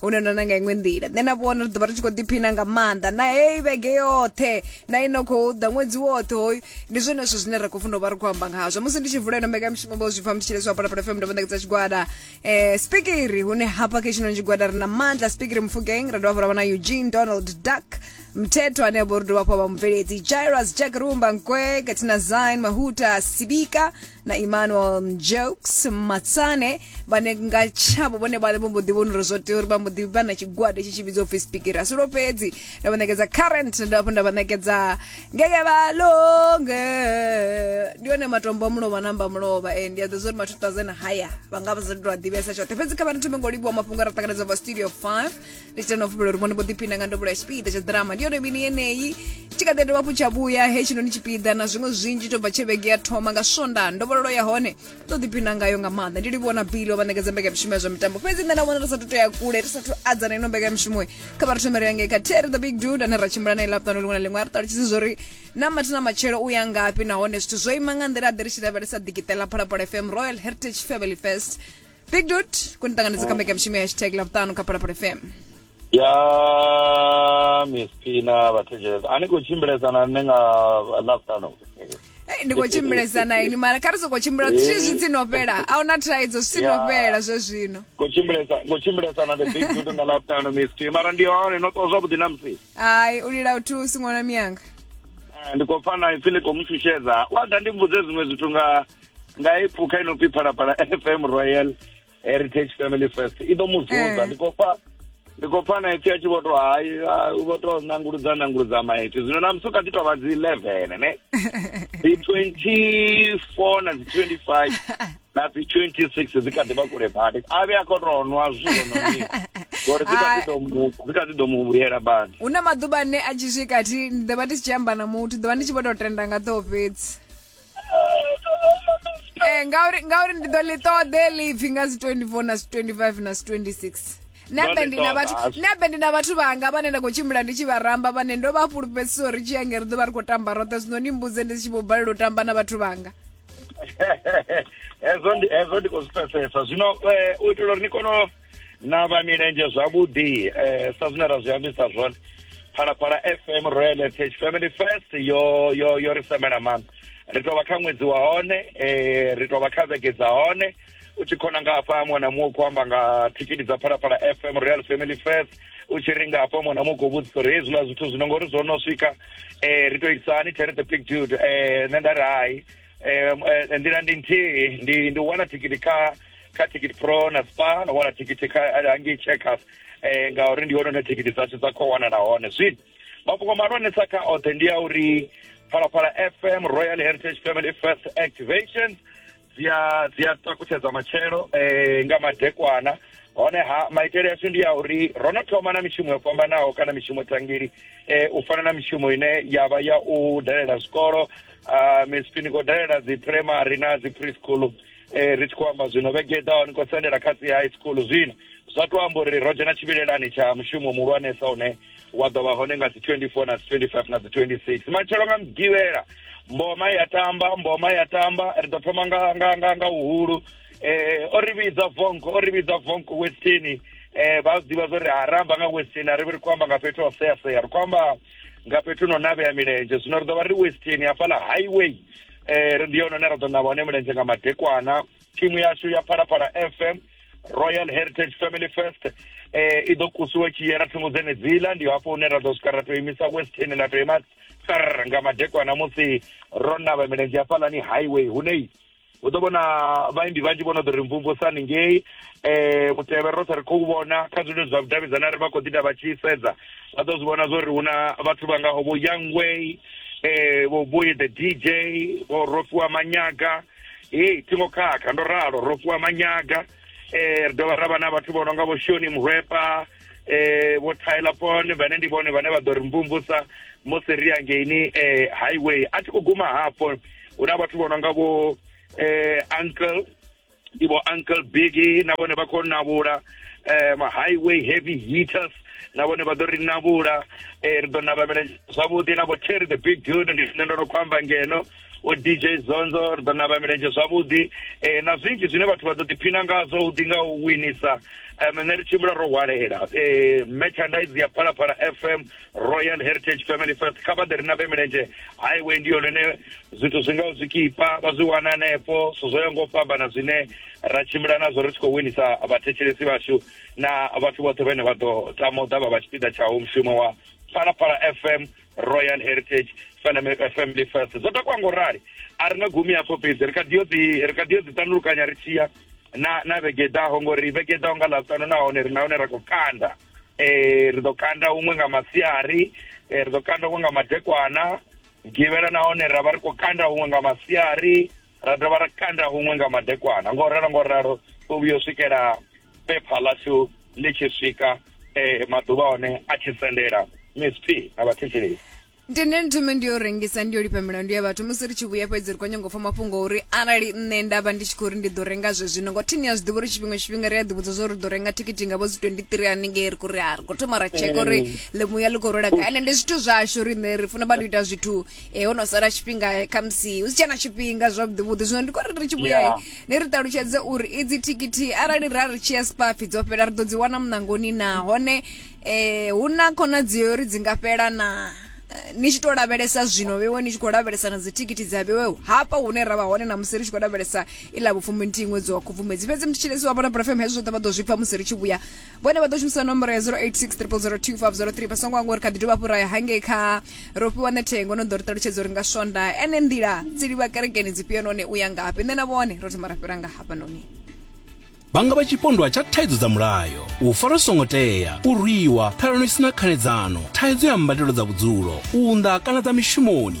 hune ndo na nga iṅwe nḓila nṋe na vhona ri ḓovha ri tshi khou ḓiphina nga maanḓa na heyi vhege yoṱhe na ino khou ḓa ṅwedzi woṱhe hoyu ndi zwone zwithu zwine ra khou funa u vha ri khou amba ngazwo musi ndi tshi vula ino mbekanyamushumo vho zwi pfa ndi tshi leswa phalaphala fm ndavha ṋekedza tshigwada um spikiri hune hafha kha tshinoni tshigwada ri na maanḓa spikiri mufugeng ra dovha fha ra vha na eugene donald duck mthetho ane vho ri dovha fha vha mubveledzi jairus jack rumba nkwe katina zine mahuta sibika na emmanuel mjokes matsane vhane nga tshavho vhone vhale vho mbo ḓi vhona uri zwo tea uri vha mbo ḓi vha na tshigwada itshi tshi vhidzwa upfi speaker asi lwo fhedzi nda vha ṋekedza current nda hafhu nda vha ṋekedza ngeke vha longe ndi one matombo a mulovha na amba mulovha e ndi a ḓo zwa uri ma 2000 haya vha nga vha sa tou a ḓivhesa tshoṱhe fhedzi kha vha ri thome ngo livhuwa mafhungo a ra ṱanganedza vha studio 5 ndi tshi tenda u fhumela uri vhone vho ḓiphina nga ndovhulo ya tshipiḓa tsha ḓirama ndi yone mini yeneyi tshi kha ḓi dovha hafhu tsha vhuya he tshinoni tshipiḓa na zwiṅwe zwinzhi to bva tshe vhege ya thoma nga swonda ndovhololo ya hone ndo ḓiphina ngayo nga maanḓa ndi livhuwa na bili vha ṋekedza mbekamishumo ya zwa mitambo fhedzi nṋe na vhona ri sathu tou ya kule ri sathu adzana ino mbekamishumo kha vha ri thomere ya ngei kha terry the big dude ane ra tshimbila nae laptano liṅwe na liṅwe a ri ṱalutshedze zwo ri na mathi na matshelo u ya ngafhi nahone zwithu zwo ima nga nḓila ḓe ri tshi lavhelesa ḓikiṱela phalaphala fm royal heritage family fest big dot ku ni ṱanganedza kha mbekanyamushumo ya hashtag lavhuṱanu kha phalaphala fm ya msp na vhathetshelesa a ni khou tshimbilesana nṋe nga lavhuṱanu Eh, ndi khou tshimbilesa na ini mara kha ri sokou tshimbila zwi zwi tsi no fhela a huna thaidzo zwi tsi no Ya. fhela zwe zwino kutshimbilesana the big dude nga lavhuṱanu msp mara ndi hone no ṱwa zwavhuḓi na msi hayi u lila u thusi ṅwana miyanga Eh, ndi khou pfa na ipfi ḽi khou mu shushedza wa ḓa ndi mbudze zwiṅwe zwithu nga nga i phukha ino pfi phalaphala fm royal heritage family first i ḓo mu zunza ndi khou pfa ndi khou pfa na ipfi a tshi vho to hayi vho to nanguludza nanguludza maipfi zwino na musi u kha ḓi tovha dzi eleven ne dzi twenty four na dzi twenty five na dzi twenty six dzi kha ḓi vha kule badi a vhe a khou to nwa zwiwo no ni ngori dzi kha ḓi ḓo mu dzi kha ḓi ḓo mu vhuyela badi hu na maḓuvha ane a tshi swika thi ndi ḓo vha ndi si tshi amba na muthu ḓo vha ndi tshi vho to tenda nga ḓoo fhedzi Eh, ngauri ngauri ndi ḓo ḽi ṱoḓe ḽipfi nga si 24 na si 25 na si 26 nabe Ndo ḽi ndi na ṱoḓa, vhathu Ashu. nabe ndi na vhathu vhanga vhane nda khou tshimbila ndi tshi vha ramba vhane ndo vha fhulufhedzisa uri tshi yange ri ḓo vha ri khou tamba roṱhe zwino ni mbudze ndi si tshi vho balelwa u tamba na vhathu vhanga hezwo ndi hezwo ndi khou zwi pfesesa zwino eh, u itela uri ni kone u- na vha milenzhe zwavhuḓi eh sa zwine ra zwi ambisa zwone phalaphala fm royal fh family first yo yo yo ri semela maanḓa ri tou vha kha ṅwedzi wa hone eh ri tou vha kha vhege dza hone u tshi khona nga hafha muṅwe na muṅwe khou amba nga thikiti dza phalaphala fm royal family first u tshi ri nga hafha muṅwe na muṅwe khou vhudzisa uri hezwiḽa zwithu zwino ngori zwo no swika um ri tou itisa hani tere the big dude um nṋe nda ri hai eh, eh, nḓila ndi nthihi ndi ndi wana thikiti kha kha ticket pro na spa na wana thikiti kha eh, hangei checkers eh, ngauri ndi hone hune thikiti dzashu dza khou wanala hone zwino mafhungo mahulwanesa kha oṱhe ndi a uri phalaphala fm royal heritage family first activation dzi a dzi a takutshedza matshelo eh, nga madekwana honeha maitele ashu ndi a uri ro no thoma na mishumo yo fhambanaho kana mishumo tangili eh, u fana na mishumo ine ya vha ya u dalela zwikolo a ah, mcp ni khou dalela dzi primary na dzi preschool um eh, ri tshi khou amba zwino vhege ḓaho ni khou sendela kha dzi high school zwino zwa tou amba uri ro dzhena tshivhilelani tsha mushumo muhulwanesa une wa ḓo vha hone nga dzi 24 na dzi 25 na dzi 26 matshelo nga mugivhela mboma ya tamba mboma ya tamba ri ḓo thoma nga nga nga nga uhulu eh o ri vhidza vonko o ri vhidza vonko westini eh vha ḓivha zwo ri ha ramba nga westini a ri vhi ri khou amba nga fhethu ho sea sea ri khou amba nga fhethu no navhea milenzhe zwino ri ḓo vha ri western hafhaḽa highway um ndi yone ne ra ḓo navha hone milenzhe nga madekwana thimu yashu ya phalaphala fm royal heritage family first um eh, i ḓo kusiwa i tshi yela thungo dzenedziḽa ndi hafho hune ra ḓo swika ra tou imisa western ḽa tou ima tsar nga madekwana musi ro navha milenzhe hafhaḽani highway hunei u ḓo vhona vhaimbi vhanzhi vho no ḓo ri mvumvusani ngei um mutevhe roṱhe ri khou vhona kha zwililo zwa vhudavhidzani a ri vha khou ḓi ita vha tshi sedza vha ḓo zwi vhona zwo ri hu na vhathu vha ngaho vho yangway um vho boye the dj vho rofhiwa manyaga hei thingo khakha ndo ralo rofhiwa manyaga um ri dovha ra vha na vhathu vho no nga vho shoni murwepa eh vho Tyler Pone vhane ndi vhone vhane vha ḓo ri mvumvusa musi ri angeini eh highway a thi khou guma hafho hu na vhathu vho no nga vho eh uncle ndi vho uncle biggie na vhone vha khou navhula eh ma highway heavy hitters na vhone vha ḓo ri navhula eh ri ḓo navhamela zwavhuḓi na vho cherry the big dude ndi zwine ndo no khou amba ngeno o dj zonzo ri ḓo navha milenzhe zwavhuḓi um na zwinzhi zwine vhathu vha ḓo ḓiphina ngazwo hu ḓi nga u winisa um nṋe ri tshimbila ro hwalela um eh, merchandise ya phalaphala fm royal heritage family first kha vha ḓe ri navhe milenzhe highway ndi yone ine zwithu zwi ngaho zwikipa vha zwi wana hanefho zwithu zwo ya ngo fhambana zwine ra tshimbila nazwo ri tshi khou winisa vhathetshelesi vhashu na vhathu vhoṱhe vhene vha ḓo tama u ḓa vha vha tshipiḓa tshawo mushumo wa phalaphala fm royal heritage family first zwo takwa ngo rali a ri nga gumi hafho fhedzi ri kha ḓi yo dzi ri kha ḓi yo dzi tandulukanya ri tshiya na na vhegedaho ngori vhegedaho nga ḽavhutano nahone ri nahone ra khou kanda eh ri ḓo kanda huṅwe nga masiari eh, ri ḓo kanda huṅwe nga madekwana givhela nahone ra vha ri khou kanda huṅwe nga masiari ra dovha ra kanda huṅwe nga madekwana ngo ralo ngo ralo u vhuya u swikela pepha ḽashu ḽi tshi swika eh maḓuvha one a tshi sendela miss p na vhathetshelesi ndi nṋe nthome ndi yo rengisa ndi yo lifha milandu ya vhathu musi ri tshi vhuya fhedzi ri khou nyanga u pfa mafhungo uri arali nṋe nda vha ndi tshi khou ri ndi ḓo renga zwe zwino ngo thini ya zwi ḓivha uri tshifhinga tshifhinga ri a ḓivhudza zwo ri ḓo renga thikhithi nga vho dzi 23 haningei ri khou ri ha ri khou thoma ra tsheka uri ḽimuya ḽi khou rwela gai ende ndi zwithu zwashu riṋe ri funa vha tou ita zwithu e ho no sala tshifhinga khamusi hu si tshena tshifhinga zwavhuḓi vhuḓi zwino ndi khou ri ri tshi vhuya yeah. ni ri ṱalutshedze uri idzi thikhithi arali ra ri tshi ya spafi dzo fhela ri ḓo dzi wana muṋangoni na hone eh hu na khonadzeo uri dzi nga fhela na eh, ni tshi to lavhelesa zwino vhewe ni tshi khou lavhelesa na dzithikhithi dza vhewe hafha hune ra vha hone na musi ri tshi khou lavhelesa iḽa vhupfumbi nthihi ṅwedzi wa khubvumedzi fhedzi mthitshilesi wa bona brafm hezwo zwoṱhe vha ḓo zwi pfa musi ri tshi vhuya vhone vha ḓo shumisa nomboro ya 0863002503 vha songo angori kha ḓi dovha fhuraya hangei kha ro fhiwa nethengo no ḓo ri ṱalutshedza uri nga swonda ene nḓila dzi livha kerekeni dzifhio noni u ya ngafhi nṋe na vhone ro thoma ra fhira nga hafha noni vhanga vha tshipondwa tsha thaidzo dza mulayo u fara songo tea u rwiwa phelano i sina khanedzano thaidzo ya mbadelo dza vhudzulo u unḓa kana dza mishumoni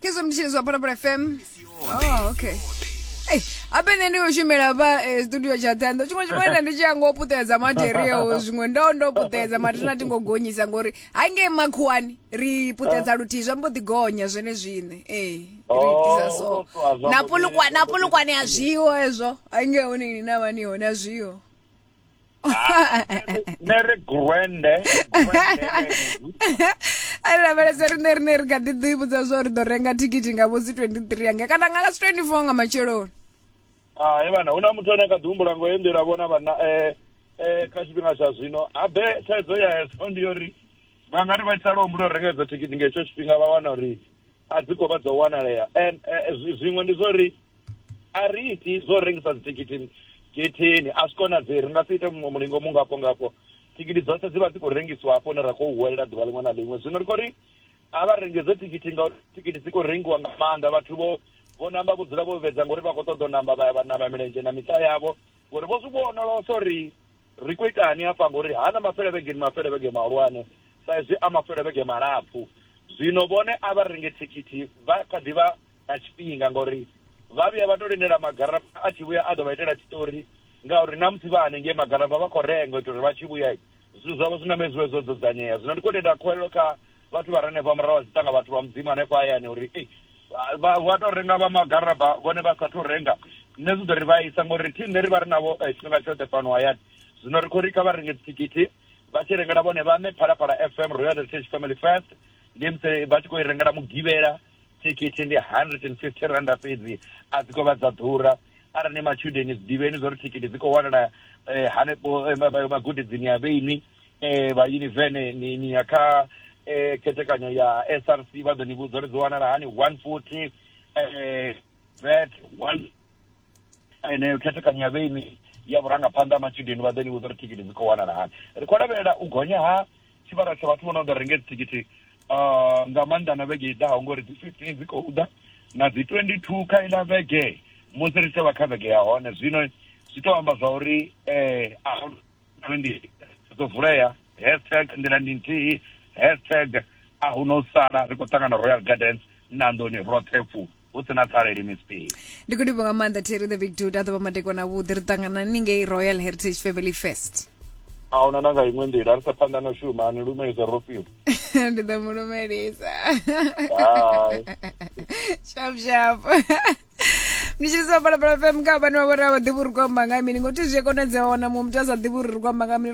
Kezwa mtshini zwa Parapara FM. Oh, okay. Hey, apa nṋe ndi khou shumela vha eh, studio tsha ṱhando tshiṅwe tshiṅwe nda ndi tshi ya ngo puṱedza material zwiṅwe ndo ndo puṱedza mara tina tingo gonyisa ngori ha ngei makhuwani ri puṱedza luthihi zwa mbo ḓi gonya zwene zwine ee ri Oh, itisa so so a zwa na mbo ḓi- pulukwa na pulukwane a zwiho hezwo ha ngei hone ni na vhani hone a zwiho nṋe ri gwende ari lavhelesa riṋe riṋe ri kha ḓi ḓi vhudza zwa uri ḓo renga thikhithi nga vhosi 23 ange kana nga lasi 24 nga matsheloni hai vhana hu na muthu ane kha ḓi humbula ngo ye nḓila vhona vhana um kha tshifhinga tsha zwino habe thaidzo ya hezwo ndi yo uri vha nga ri vha tsala humbula u renga idzo thikhithi nga hetsho tshifhinga vha wana uri a dzi khou vha dzo wanalea and zwiṅwe ndi zwa uri a ri iti zwo rengisa dzithikhithi getheni a zwi konadzei ri nga si ite muṅwe mulingo mu ngafho ngafho thikhithi dzoṱhe dzi vha dzi khou rengiswa hafho hune ra khou huwelela ḓuvha ḽiṅwe na ḽiṅwe zwino ri khou ri a vha renge dzo thikhithi ngauri thikhithi dzi khou rengiwa nga maanḓa vhathu vho vho namba vho dzula vho vhedza ngori vha khou ṱoḓa u namba vha ya vha namba milenzhe na miṱa yavho ngori vho zwi vhonolosa uri ri khou itani hafha ngori ha na mafelevhege ni mafelevhege mahulwane sa izwi a mafelevhege malapfu zwino vhone a vha renge thikhithi vha kha ḓi vha na tshifhinga ngauri vha vhuya vha to lindela magarafha a tshi vhuya a ḓo vha itela tshiṱori ngauri na musi vha hanengei magarafha vha khou renga u itela uri vha tshi vhuya zwithu zwavho zwi name zwi vhe zwo dzudzanyea zwino ndi khou tenda khuwelelo kha vhathu vha re hanefha murahu vha dziṱanga vhathu vha mudzimu hanefha hayani uri ei vha vha to renga vha magaraba vhone vha sathu renga nṋe zwi ḓo ri vha isa ngori thi nṋe ri vha ri navho eh, tshifhinga tshoṱhe fhano hayani zwino ri khou ri kha vha renge dzithikhithi vha tshi rengela vhone vhaṋe phalaphala fm royal heritage family first ndi musi vha tshi khou i rengela mugivhela Thikhithi ndi R150 fhedzi, a dzi khou vha dza ḓura. Arali ni matshudeni, zwi ḓivheni zwa uri thikhithi dzi khou wanala hanefho magudedzini a vhenwi vha yunivene. Ni ni ya kha khethekanyo ya SRC vha ḓo ni vhudza uri dzi wanala hani, 140 VAT. eneyo khethekanyo ya vheini ya vhurangaphanḓa ha matshudeni vha ḓo ni vhudza uri thikhithi dzi khou wanala hani ri khou lavhelela u gonya ha tshivhalo tsha vhathu vho no ḓo renge dzithikhithi ah, nga maanḓa na vhege i ḓaho ngori dzi 15 dzi khou ḓa na dzi 22 kha iḽa vhege musi ri tshi vha kha vhege ya hone zwino zwi tou amba zwa uri um ndi ḓo vulea hashtag nḓila ndi nthihi hashtag a hu no sala ri khou ṱangana royal gardens na nḓoni roṱhe fulo hu si na pfareli miss p ndi khou livho nga maanḓa terry the big dude a ḓovha madekwana avhuḓi ri ṱangana ni ngei royal heritage family fest a huna na nga iṅwe nḓila ri sa phanḓa na shuma ni lumelisa ro fhiwa ndi ḓo mu lumelisa shap shap ndi tshi sa balabala fm kha vhane vha vhori a vha ḓivhi uri kwamba nga mini ngothi zwi a konadzea wana muṅwe muthu a sa ḓivhi uri ri kwamba nga mini